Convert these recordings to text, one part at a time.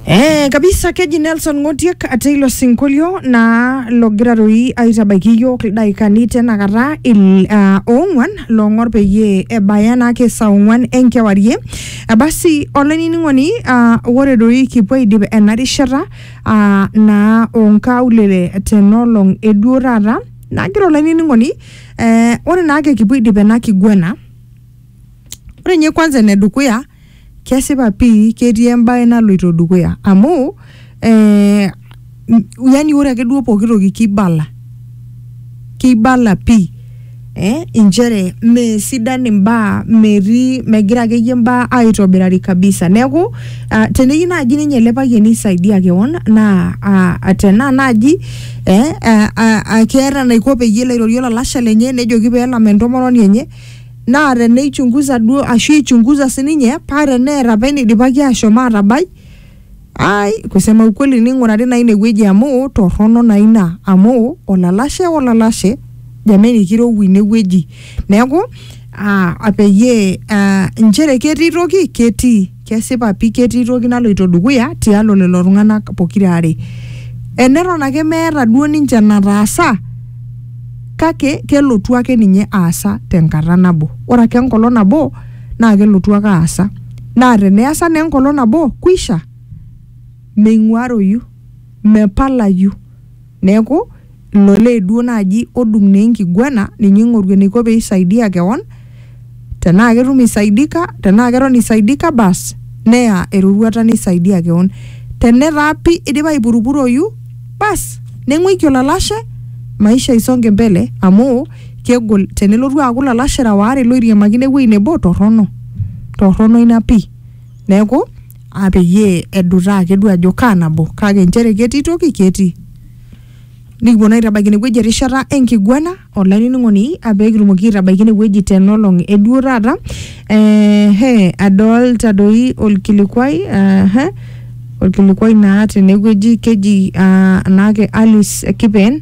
Eh, kabisa keji Nelson Ng'otiek ate ilo sinkolio naa logira toi aitabaiki iyiook ildaikani tenakata il uh, oong'uan loong'or peyie ebaya naake saa ong'uan enkewarie Eh, basi olainining'oni uh, ore doi kipuo aidip ena rishata uh, naa onkaulele tenolong eduo taata nagira olainining'oni eh, ore naake kipuo aidip ena kiguana ore ninye kwanza enedukuya Kesipa pii ketii embae naloito dukuya amu eh, yani ore ake duo pooki toki kibala kibala pii eh, inchere mesidan imbaa metii megira akeyie imbaa aitobirari kabisa neeku uh, teneyieu naaji ninye ele payiani aisaidia kewon naa uh, tenaa naaji eh, uh, uh, uh, keeta enaiko peyie elo airorie olalashe lenye nejoki peelam entomononi enye naa te neichunguza duo ashu eichunguza sininye paa teneeta apa eneidipaki aashom aatabai ai kusema ukweli neing'urari naa ine wueji amu torrono naa ina amu olalashe olalashe jameni kirowua ine wueji neeku aa peyie aa inchere ketii toki ketii Kesipa pi ketii toki naloito dukuya tialo lelo tung'ana pokira are. Eneton ake meeta duo ninche enataasa kake kelotu ake ninye aasa tenkata nabo. Ore ake enkolong nabo naa kelotu ake aasa. Naa teneasa naa enkolong nabo kwisha. Meing'uaroyu. Mepalayu. Neaku, ilo lee duo naaji odung naa enkiguana ninye oing'oru eneiko pee eisaidia kewon, tenaa ketum eisaidika, tenaa keton eisaidika baas neya eroruata neisaidia kewon. Tenetaa pi eidipa aipurupuroyu baas neng'uiki olalashe maisha isonge mbele amu kegol tenelotu aaku ilalashera waare looiriamakino ewueji nebo torrono. Torrono ina pi. Neaku aa peyie edutaa ake duo ajo kaa nabo kake nchere ketii toki ketii. Nikipuo naa aitabaiki ine wueji erishata enkiguana olainining'oni aa pee kitumoki aitabaiki ine wueji tena olong e duo taata. Ee hee adolta doi orkilikuai aa hee orkilikuai naa tene wueji keji aa naake Alice Kipen.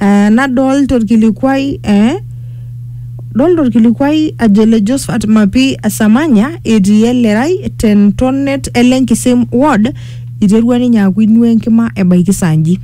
Eh, nadolta orkilikuai eh, dolta orkilikuai ajo le Josephat Mapi Samanya etii elerai te ntonet ele Nkisem ward iterua ninye aaku inua enkima ebaiki saa nji.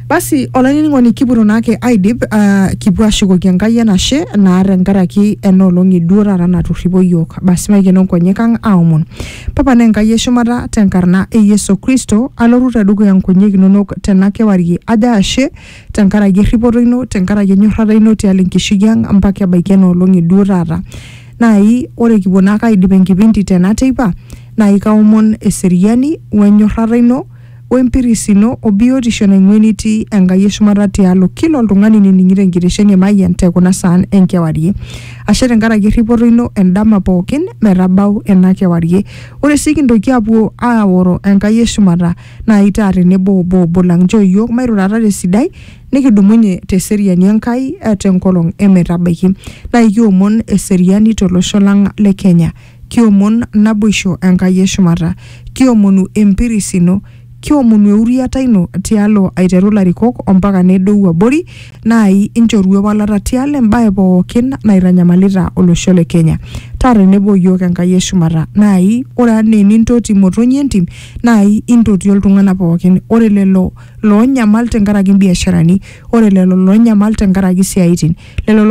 Basi olainining'oni kipuoto naake aidip ah, kipuo ashukoki Enkai enashe naa tenkaraki ena olong e duo taata naturripo iyiook. Basi maikeno nkonyek ang aomon. Tapala Enkai e shumata te nkarna e Yesu Kristo, alotu te dukuya nkonyek inonok tena kewarie ajo ashe te nkaraki erripoto ino, te nkaraki enyorrata ino tialo enkishui ang mpaka ebaiki ena olong e duo taata. Naai ore kipuo naake aidip enkipindi tena teipa, naai kaomon eseriani o enyorrata ino O empiris ino o biotisho naing'ua enitii Enkai e shumata tialo kila oltung'ani nining'ito enkitesheni e Mayian te kuna saan e nkewarie. Ashe tenkaraki erripoto ino endama pookin metabau ena kewarie. Ore sii kintoki aapuo aaoro Enkai e shumata naai taa tenebo obo obo lang. Nchoo iyiook mairurata te sidai nikidumunye te seriani Enkai te nkolong e metabaiki. Naai kiomon eseriani to losho lang le Kenya. Kiomon naboisho Enkai e shumata. Kiomonu empiris ino. Kiomonu euriata ino tialo aiteru ilarikok ompaka nedou abori naai inchoru ewalata tialo embae pookin naitanyamalita olosho le Kenya. Taa tenebo o iyiook Enkai e shumata. Naai ore anaa enintoti imotonyi e ntim naai intotio iltung'ana pookin. Ore lelo loonyamal tenkaraki imbiasharani, ore lelo loonyamal tenkaraki isiaaitin, lelo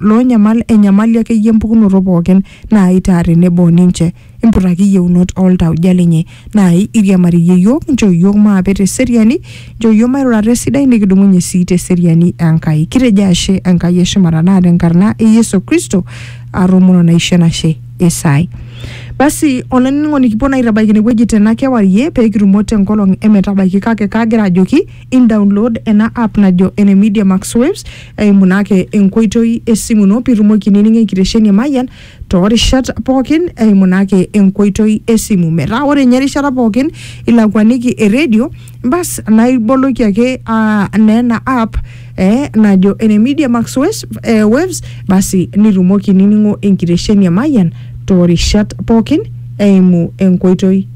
loonyamal enyamali akeyie empukunoto pookin naai taa tenebo o ninche. Imputaki iyieunot oo ltauja linyi. Naai iriamariyie iyiook, nchoo iyiook maape te seriani, nchoo iyiook mairura te sidai nikidumunye sii te seriani e Nkai. Kitejo ashe Enkai e shumata naa te nkarna e Yesu Kristo aatomono naisho enashe Isai. Basi olainining'oni kipuo naa aitabaiki ine wueji tena kewarie pee kitumo te nkolong e metabaiki kake kagira ajoki Indaunlod ena app najo ene Media Max Waves eimu naa ake enkoitoi esimu ino pitumoki ainining'o enkitesheni e Mayian toorishat pookin eimu naa ake enkoitoi esimu. Metaa ore ninye erishata pookin ilakuaniki eredio bas naa iboloki ake aa naa ena app eh, najo ene Media Max Waves, eh, Waves basi nitumoki ainining'o enkitesheni e Mayian toorishat pookin eimu enkoitoi